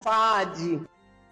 Basadi.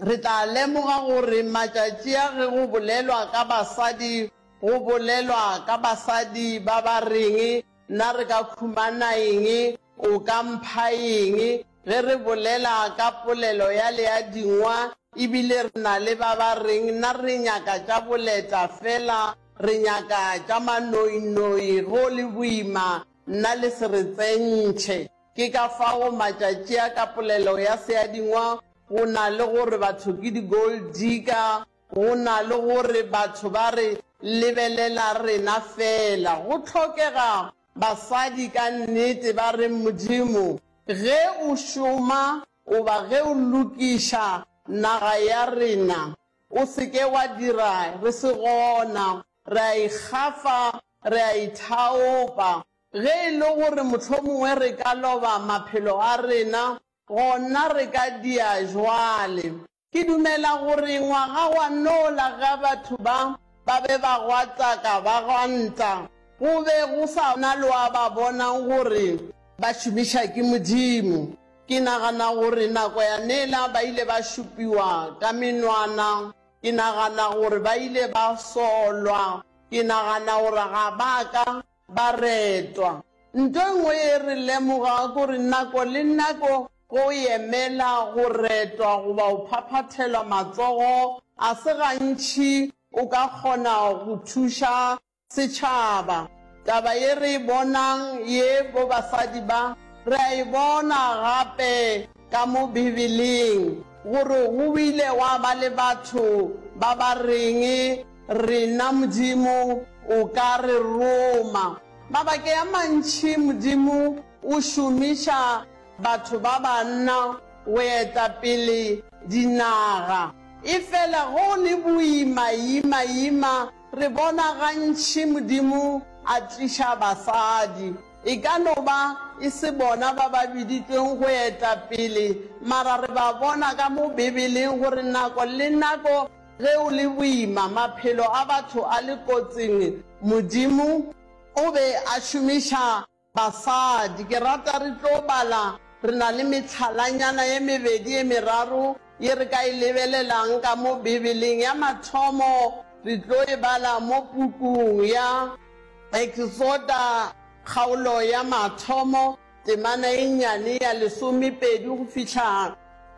Re tla lemoga gore matšatši a ge go bolelwa ka basadi go bolelwa ka basadi ba ba reng, Na re ka khumana eng? O ka mpha eng? Ge re bolela ka polelo ya leadingwa e bile re na le ba ba reng, Na re nyaka tša boleta fela, re nyaka tša manoinoi, go le boima nna le se re tsentšhe. Ke ka fao matšatši a ka polelo ya seadingwa go na le gore batho ke di-gold digger, go na le gore batho ba re lebelela rena feela. Go hlokega basadi ka nnete ba reng Modimo ge o šoma goba ge o lokiša naga ya rena, o se ke wa dira re se gona, re a ikgafa, re a ithaopa, Ge e le gore mohlomongwe re ka loba maphelo a rena, gona re ka dia jwale. Ke dumela gore ngwaga wa nola ge batho ba ba be ba gwataka ba gwanta, go be go sa na lo a ba bonang gore ba šomiša ke Modimo. Ke nagana gore nako ya nela ba ile ba šupiwa ka menwana. Ke nagana gore ba ile ba solwa. Ke nagana gore ga ba ka Baretwa, nto e nngwe ye re lemoga kore nako le nako go yemela go retwa goba go phaphathelwa matsogo a se gantši o ka kgona go thuša setšhaba. Taba ye re e bonang ye bo basadi ba, re a e bona gape ka mo Bibeleng gore go ile gwa ba le batho ba ba reng, Rena Modimo o ka re roma. Mabake a mantši Modimo o šomiša batho ba banna go eta pele dinaga. Efela go le boima ima ima re bona gantši Modimo a tliša basadi. E ka no ba e se bona ba ba biditšweng go eta pele, mara re ba bona ka mo Bibeleng gore nako le nako ge go le boima, maphelo a batho a le kotsing, Modimo o be a šomiša basadi. Ke rata re tlo bala, re na le mehlalanyana ye mebedi ye meraro Ye re ka e lebelelang ka mo Bibeleng ya mathomo re tlo e bala mo pukung ya Eksoda kgaolo ya mathomo temana e nnyane ya lesomepedi go fihla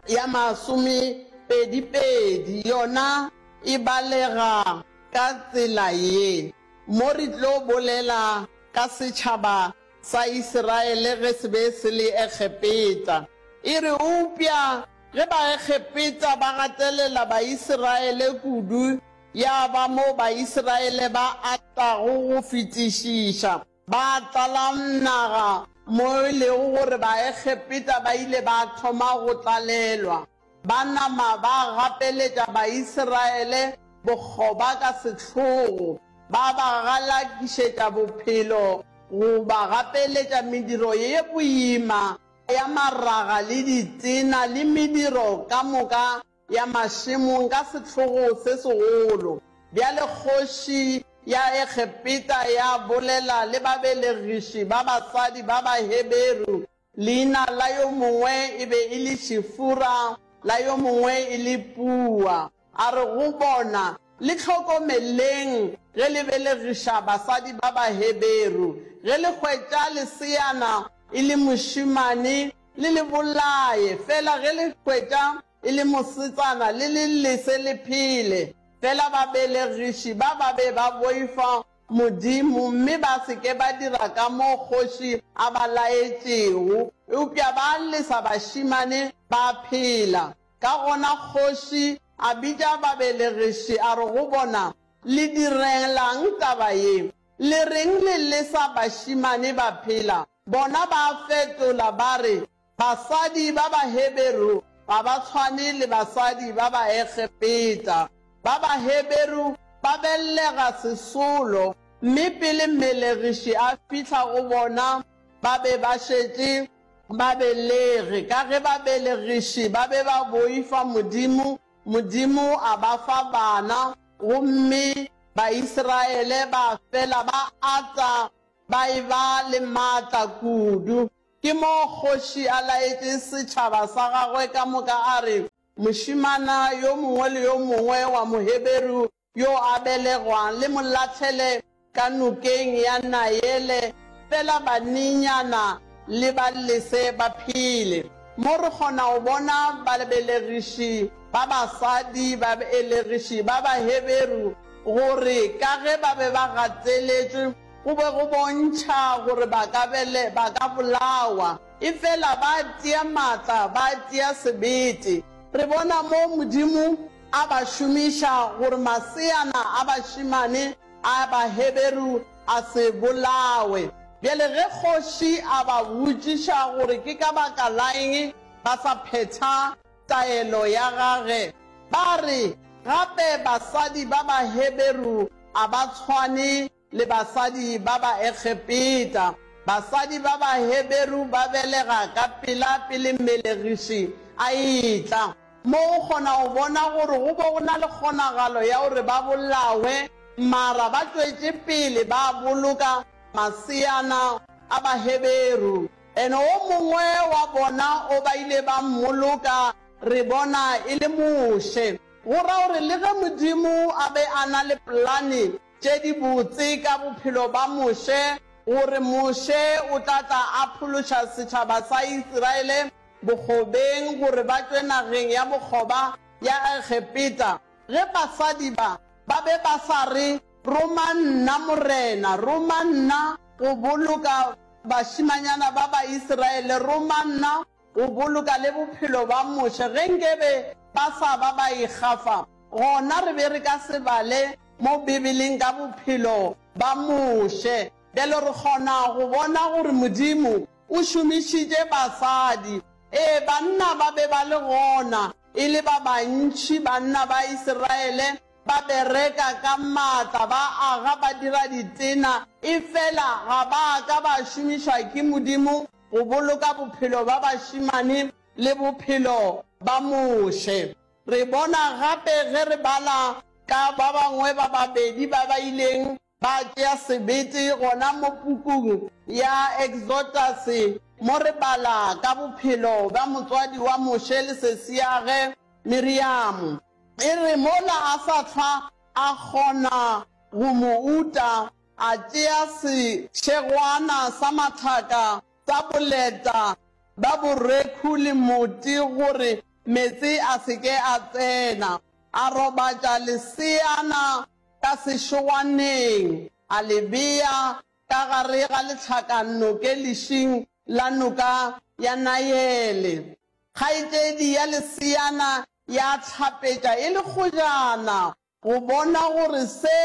ya masomepedipedi. Yona e balega ka tsela ye, mo re tlo bolela ka setšhaba Sa Isiraele ge se be se le Egepeta. E re eupša ge Baegepeta ba gatelela Baisiraele kudu, ya ba mo Baisiraele ba atago go fetišiša, ba tlala naga, mo e lego gore Baegepeta ba ile ba thoma go tlalelwa. Ba nama ba gapeletša Baisraele bokgoba ka sehlogo, ba ba galakišetša bophelo, go ba gapeletša mediro ye boima ya maraga le ditena le mediro ka moka ya mašemong ka sehlogo se segolo. Bjale kgoši ya Egepeta ya bolela le babelegiši ba basadi ba Baheberu Leina la yo mongwe e be e le Shifura, la yo mongwe e le Pua. A re go bona, Le hlokomeleng ge le belegiša basadi ba Baheberu. Ge le hwetša leseana e le mošemane, le le bolaye, fela ge le hwetša e le mosetsana, le le lese le phele. Fela babelegiši ba ba be ba boifa Modimo, mme ba se ke ba dira ka mo kgoši a ba laetšego, eupša ba lesa bašemane ba phela. Ka gona kgoši a bitša babelegiši, a re go bona, Le direlang taba ye? Le reng le lesa bašemane ba phela? Bona ba fetola ba re, Basadi ba Baheberu ga ba tshwane le basadi ba Baegepeta. Ba Baheberu ba bellega sesolo, mme pele mmelegiši a fihla go bona ba be ba šetše ba belege. Ka ge babelegiši ba be ba boifa Modimo, Modimo a ba fa bana, gomme Baisraele ba fela ba ata ba e-ba le matla kudu. Ke moo kgoši a laetšeng setšhaba sa gagwe ka moka a re, Mošemana yo mongwe le yo mongwe wa Moheberu yo a belegwang le mo lahlele ka nokeng ya Naele, fela banenyana le ba lese ba phele. Mo re kgona go bona babelegiši ba basadi, babelegiši ba Baheberu, gore ka ge ba be ba gateletšwe, Go be go bontšha gore ba ka be le, ba ka bolawa, efela ba tšea maatla, ba tšea sebete. Re bona moo Modimo a ba šomiša gore maseana a bašemane a Baheberu a se bolawe. Bjale ge kgoši a ba botšiša gore ke ka baka laeng ba sa phetha, taelo ya gage, ba re, Gape basadi ba Baheberu a ba tshwane le basadi ba Baegepeta. Basadi ba Baheberu ba belega ka pela pele mmelegiši a etla. Mo o kgona go bona gore go be go na le kgonagalo ya gore ba bolawe, mara ba tšwetše pele ba boloka maseana a Baheberu. Ene o mongwe wa bona o ba ile ba mmoloka, re bona, e le Moshe. Go ra gore le ge Modimo a be a na le polane tše di botse ka bophelo ba Moshe, gore Moshe o tla tla a phološa setšhaba sa Isiraele bokgobeng gore ba tšwe nageng ya bokgoba ya Egepeta, ge basadi ba ba be ba sa re, Roma nna, Morena! Roma nna go boloka bašimanyana ba Baisraele, roma nna go boloka le bophelo bwa Moshe. Ge nkebe ba sa ba ba ikgafa, gona re be re ka se bale mo Bibeleng ka bophelo ba Moshe. Bjale re kgona go bona gore Modimo o šomišitše basadi. Ee, banna ba be ba le gona e le ba bantši, banna ba Isiraele Ba bereka ka matla, ba aga, ba dira ditena, efela ga ba ka ba šomišwa ke Modimo go boloka bophelo ba bašemane le bophelo ba Moshe. Re bona gape ge re bala ka ba bangwe ba babedi ba ba ileng Ba tšea sebete gona mo pukung ya Eksotase mo re bala ka bophelo bja motswadi wa Moshe le sesiage Miriamo. E re mola a sa hlwa a kgona go mo uta, a tšea sešegwana sa matlhaka sa boleta bja borekhu le moti gore meetse a se ke a tsena, a robatša leseana ka sešoaneng, a le bea ka gare ga lehlakannoke lešing la noka ya Naele. Kgaetšedi ya leseana ya hlapetša e le kgojana go bona gore se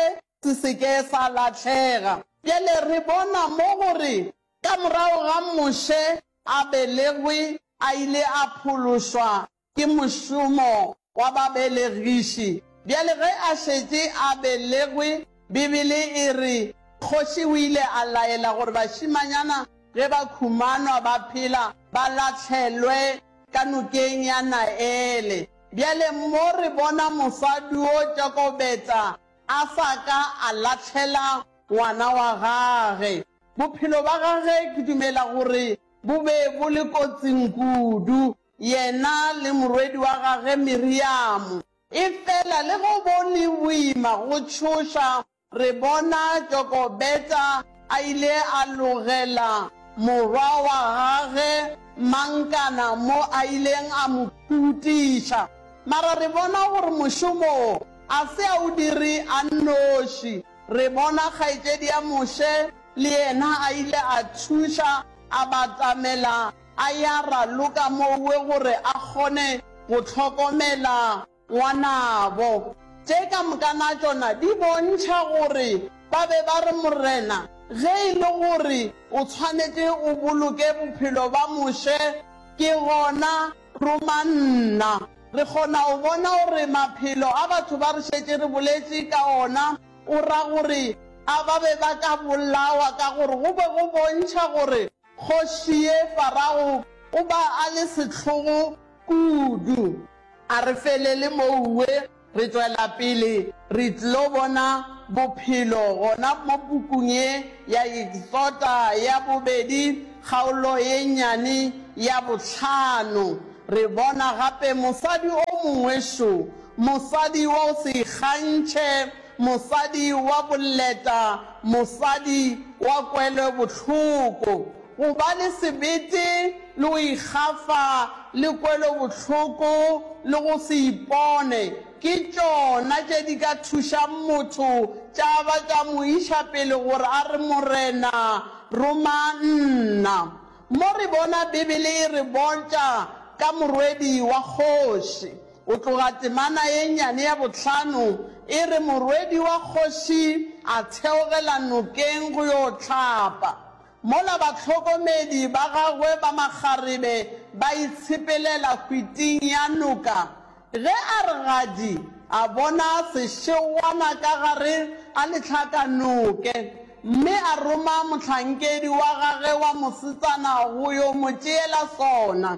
se se ke sa lahlega. Bjale re bona mo gore ka morago ga Moshe a belegwe, a ile a phološwa Ke mošomo wa babelegiši. Bjale ge a šetše a belegwe, Bibele e re, Kgoši o ile a laela gore bašimanyana ge ba khumanwa ba phela ba lahlelwe ka nokeng ya Naele. Bjale mo re bona mosadi wo Jokobeta a sa ka a lahlela ngwana wa gage. Bophelo ba gage ke dumela gore bo be bo le kotsing kudu. Yena le morwedi wa gage Miriamo. Efela le ge go le boima go tšhoša, re bona Jokobeta a ile a logela morwa wa gage Mankana mo a ileng a mo khutiša. Mara re bona gore mošomo wo a se a o dire a nnoši. Re bona kgaetšedi ya Moshe le yena a ile a thuša, a batamela a ya raloka mowe gore a kgone go hlokomela ngwanabo. Tše ka mokana tšona di bontšha gore ba be ba re, Morena, ge e le gore o tshwanetše o boloke bophelo ba Moshe, ke gona roma nna. Re kgona go bona gore maphelo a batho ba re šetše re boletše ka ona o ra gore a ba be ba ka bolawa ka gore go be go bontšha gore Kgoši ye Farago o ba a le sehlogo kudu. A re felele mouwe, re tšwela pele re tlo bona bophelo gona mo pukung ye ya Eksota ya bobedi kgaolo ye nnyane ya bohlano. Re bona gape mosadi o mongwe šo, mosadi wa go se ikgantšhe Mosadi wa bolleta, mosadi wa kwelobohloko. Go ba le sebete le go ikgafa le kwelobohloko le go se ipone ke tšona tše di ka thušang motho tša ba tša mo iša pele gore a re, Morena, roma nna. Mo re bona Bibele e re bontša ka morwedi wa kgoši. Go tloga temana ye nnyane ya bohlano e re morwedi wa kgoši a theogela nokeng go yo hlapa, mola bahlokomedi ba gagwe ba makgarebe ba itshepelela hwiting ya noka, ge a re gadi a bona sešegwana ka gare a lehlakanoke, mme a roma mohlankedi wa gage wa mosetsana go yo mo tšeela sona.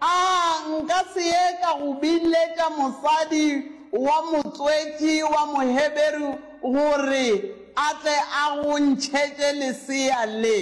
A nka se ye ka go biletša mosadi wa motswetši wa Moheberu gore a tle a go ntšhetše lesea le?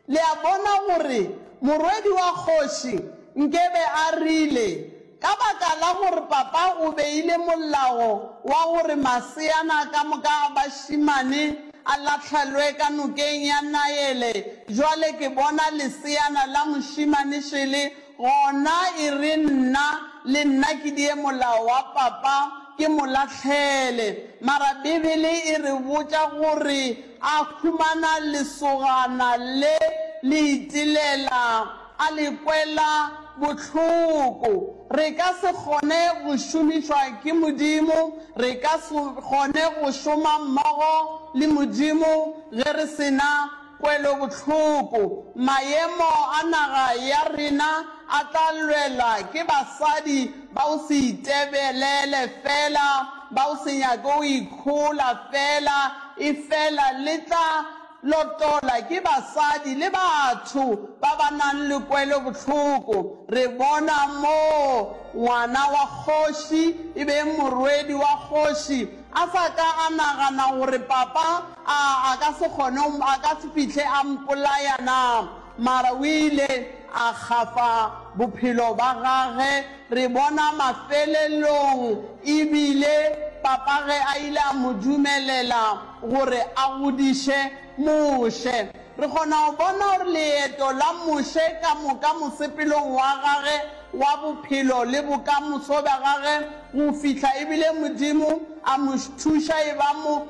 Le a bona gore morwedi wa kgoši nkebe a rile, Ka baka la gore papa o beile molao wa gore maseana ka moka a bašemane A lahlelwe ka nokeng ya Naele. Bjale ke bona leseana la mošemane šele gona, e re, Nna, le nna ke die molao wa papa, ke mo lahlele. Mara Bibele e re botša gore a humana lesogana le le itelela. A le kwela bohloko. Re ka se kgone go šomišwa ke Modimo, re ka se kgone go šoma mmogo le Modimo ge re se na kwelobohloko. Maemo a naga ya rena a tla lwelwa ke basadi ba go se itebelele feela, ba go se nyake go ikhola feela, efela le tla Lotola ke basadi le batho ba ba nang le kwelobohloko. Re bona moo ngwana wa kgoši, e beng morwedi wa kgoši, a sa ka a nagana gore papa a a ka se kgone, a ka se fihle a mpolaya na, mara o ile a kgafa bophelo ba gage Re bona mafelelong e bile Papa ge a ile a mo dumelela gore a godiše Moshe. Re kgona go bona gore leeto la Moshe ka moka mosepelong wa gage wa bophelo le bokamoso bja gage go fihla e bile Modimo a mo thuša e ba mo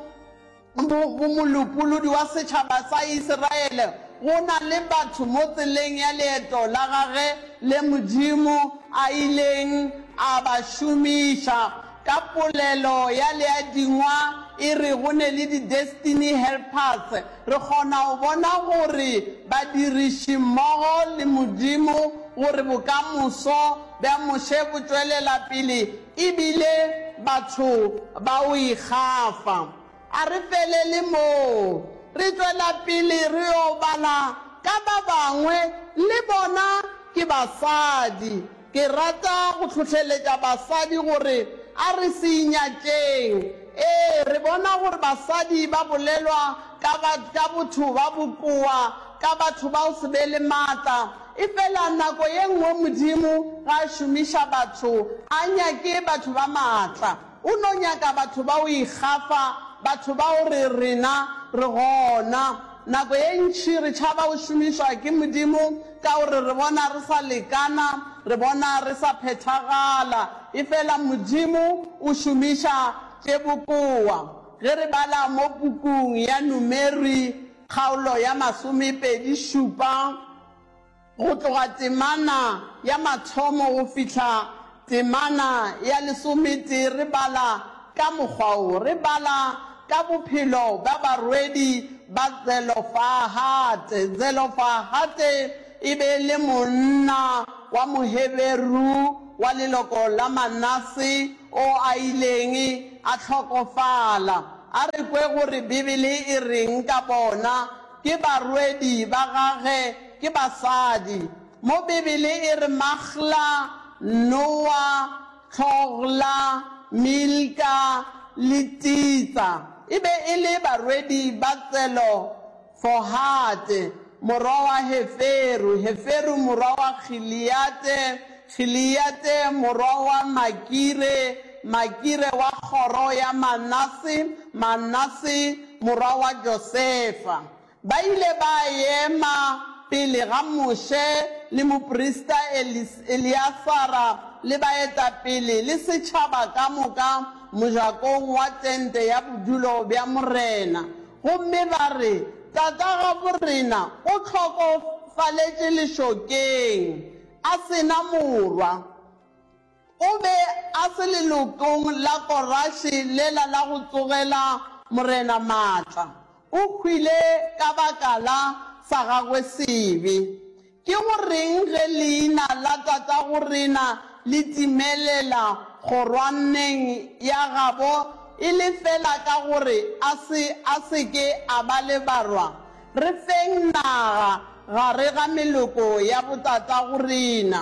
Mo, molopolodi wa setšhaba sa Isiraele, go na le batho mo tseleng ya leeto la gagwe le Modimo a ileng a ba šomiša. Ka polelo ya Leadingwa e re go ne le di-destiny helpers, re kgona go bona gore badirišimmogo le Modimo gore bokamoso bja Moshe bo tšwelela pele E bile batho ba o ikgafa. A re felele moo. Re tšwela pele re yo bala ka ba bangwe, le bona ke basadi. Ke rata go hlohleletša basadi gore a re se inyatšeng. Ee, re bona gore basadi ba bolelwa ka, ka botho ba bokoa, ka batho ba go se be le matla, Efela nako ye nngwe Modimo ge a šomiša batho a nyake batho ba maatla. O no nyaka batho ba go ikgafa, batho ba go re rena re gona. Nako ye ntši re tšhaba go šomišwa ke Modimo ka gore re bona re sa lekana, re bona re sa phethagala. Efela Modimo o šomiša tše bokowa. Ge re bala mo pukung ya Numeri, Kgaolo ya masomepedi šupa, go tloga temana ya mathomo go fihla temana ya lesometee re bala ka mokgwa wo, re bala ka bophelo bja barwedi ba Tselofahate. Tselofahate e be e le monna wa Moheberu wa leloko la Manase o a ileng a hlokofala. A re kwe gore Bibele e reng ka bona. Ke barwedi ba gage, ke basadi. Mo Bibele e re Maghla, Nowa, Tlhogla, Milka le Titsa e be e le barwedi ba tselo Fohate, morwa wa Heferu, Heferu morwa wa Giliate, Giliate morwa wa Makire, Makire wa kgoro ya Manase, Manase morwa wa Josefa. Ba ile ba ema pele ga Moshe le moprista Eleasara le baetapele le setšhaba ka moka mojakong wa tente ya bodulo bja Morena. Gomme ba re, Tatagaborena o hlokofaletše lešokeng, a se na morwa. O be a se lelokong la Korashe lela la go tsogela morena matla. O hwile ka baka la sa gagwe sebe. Ke go reng ge leina la tatagorena le timelela kgorwaneng ya gabo e le fela ka gore a se a se ke a ba le barwa? Re feng naga gare ga meloko ya botatagorena.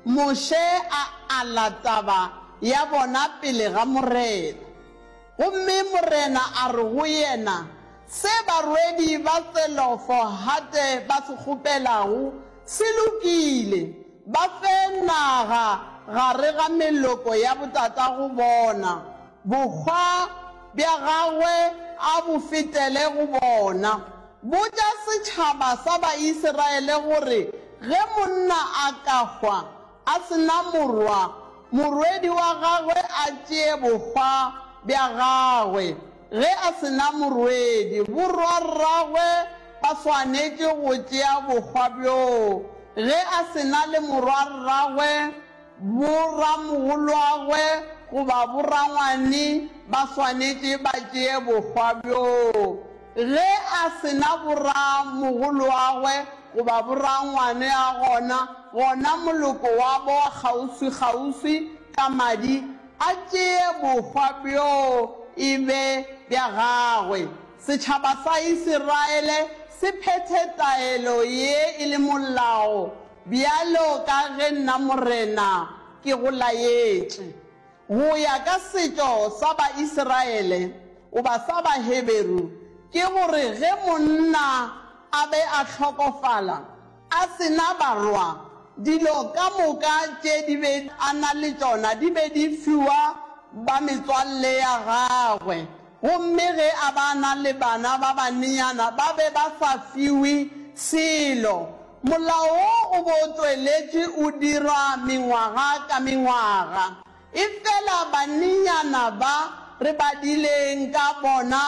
Moshe a ala taba ya bona pele ga Morena. Gomme Morena a re go yena, Se barwedi ba Tselofo-hate ba se kgopelago se lokile, ba fe naga gare ga meloko ya botatago bona, bokgwa bja gagwe a bo fetele go bona. Botša setšhaba sa Baisraele gore ge monna a ka hwa, A se na morwa, morwedi wa gagwe a tšee bohwa bja gagwe. Ge a se na morwedi, borwarragwe ba swanetše go tšea bohwa bjoo. Ge a se na le morwarragwe, boramogolwagwe goba borangwane ba swanetše ba tšee bohwa bjoo. Ge a se na boramogoloagwe goba borangwane a gona, gona moloko wabo wa kgauswikgauswi ka madi a tšee bohwa bjoo e be bja gagwe. Setšhaba sa Isiraele se phethe taelo ye e le molao, bjalo ka ge nna Morena ke go laetše. Go ya ka setšo sa Baisiraele goba sa Baheberu, ke gore ge monna a be a hlokofala a se na barwa, dilo ka moka tše di be a na le tšona di be di fiwa ba metswalle ya gagwe. Gomme ge a ba na le bana ba banenyana, ba be ba sa fiwe selo. Molao wo o be o tšweletše o dirwa mengwaga ka mengwaga. Efela banenyana ba re badileng ka bona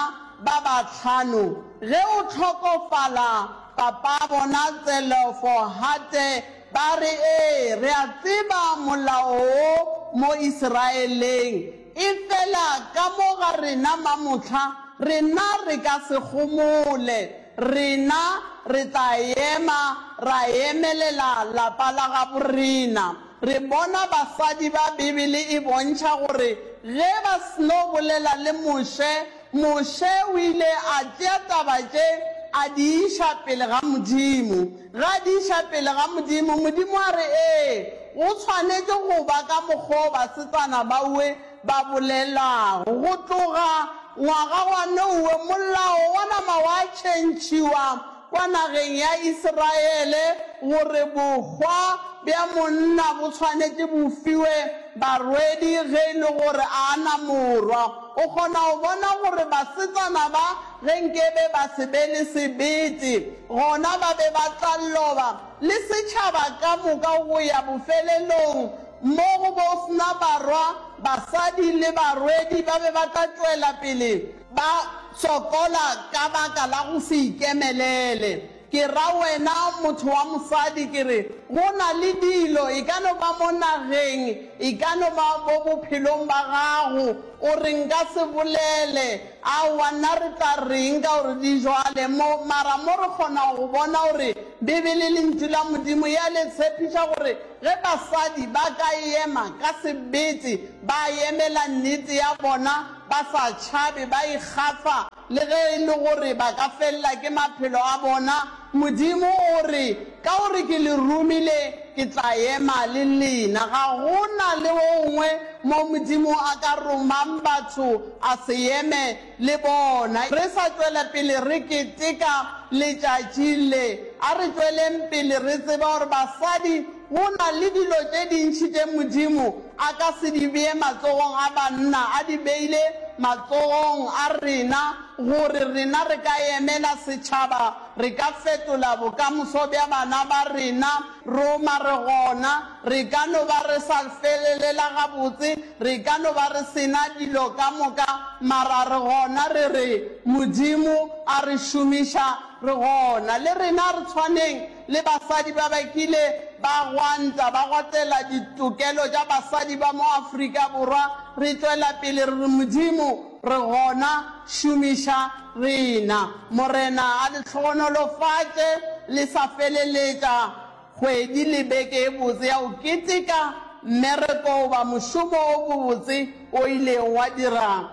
ba bahlano, ge o hlokofala papabona Tselofohate, ba re, Ee, re a tseba Molao wo mo Isiraeleng. Efela ka mo ga rena mamohla, rena re ka se gomole. Rena re tla ema ra emelela lapa la gabo rena. Re bona basadi ba Bibele e bontšha gore ge ba sno bolela le Moshe Moshe o ile a tšea taba tše a di iša pele ga Modimo. Ge a di iša pele ga Modimo, Modimo a re, Ee, go swanetše go ba ka mokgwa o basetsana baowe ba bolelago. Go tloga ngwaga wa nowe, molao wa nama wa tšhentšhiwa kwa nageng ya Israele gore bohwa bja monna bo swanetše bo fiwe barwedi ge e le gore a na morwa. O kgona go bona gore basetsana ba ge nkebe ba se be le sebete, gona ba be ba tla loba, le setšhaba ka moka go ya bofelelong, mo go bo sna barwa, basadi le barwedi ba be ba tla tšwela pele Ba sokola ka baka la go se ikemelele. Ke ra wena motho wa mosadi ke re go na le dilo, e ka no ba mo nageng, e ka no ba bo bophelong ba gago, o re nka se bolele. Aowa, nna re tla reng ka gore di jwale mo? Mara mo re kgona go bona gore Bibele e Lentšu la Modimo e a le tshepiša gore ge basadi ba ka ema ka sebete ba yemela nnete ya bona, Ba sa tšhabe, ba ikgafa le ge e le gore ba ka felela ke maphelo a bona. Modimo o re, Ka gore ke le romile, ke tla ema le lena. Ga go na le gongwe mo Modimo a ka romang batho a se eme le bona. Re sa tšwela pele re keteka letšatši le, a re tšweleng pele re tseba gore basadi Go na le dilo tše dintši tše Modimo a ka se di bee matsogong a banna, a di beile matsogong a rena, gore rena re ka emela setšhaba, re ka fetola bokamoso bja bana ba rena. Roma re gona, re ka no ba re sa felelela gabotse, re ka no ba re se na dilo ka moka, mara re gona, re re Modimo a re šomiša, re gona. Le rena re tshwaneng. le basadi ba ba kile ba gwanta ba gotela ditokelo tša basadi ba mo Afrika Borwa, re tšwela pele re re, Modimo re gona, šomiša rena. Morena a le hlogonolofatše le sa feleletša kgwedi le beke e botse ya go keteka mmereko goba mošomo o bobotse o ileng wa dira.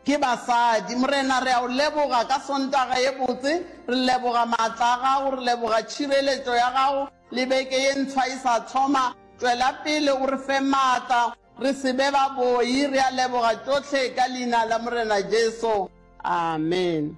Ke basadi. Morena, re a O leboga ka Sontaga ye botse. Re leboga maatla a Gago. Re leboga tšhireletšo ya Gago le beke ye ntshwa e sa thoma. Tšwela pele o re fe maatla, re se be ba boi. Re a leboga tšohle ka Leina la Morena Jesu. Amen.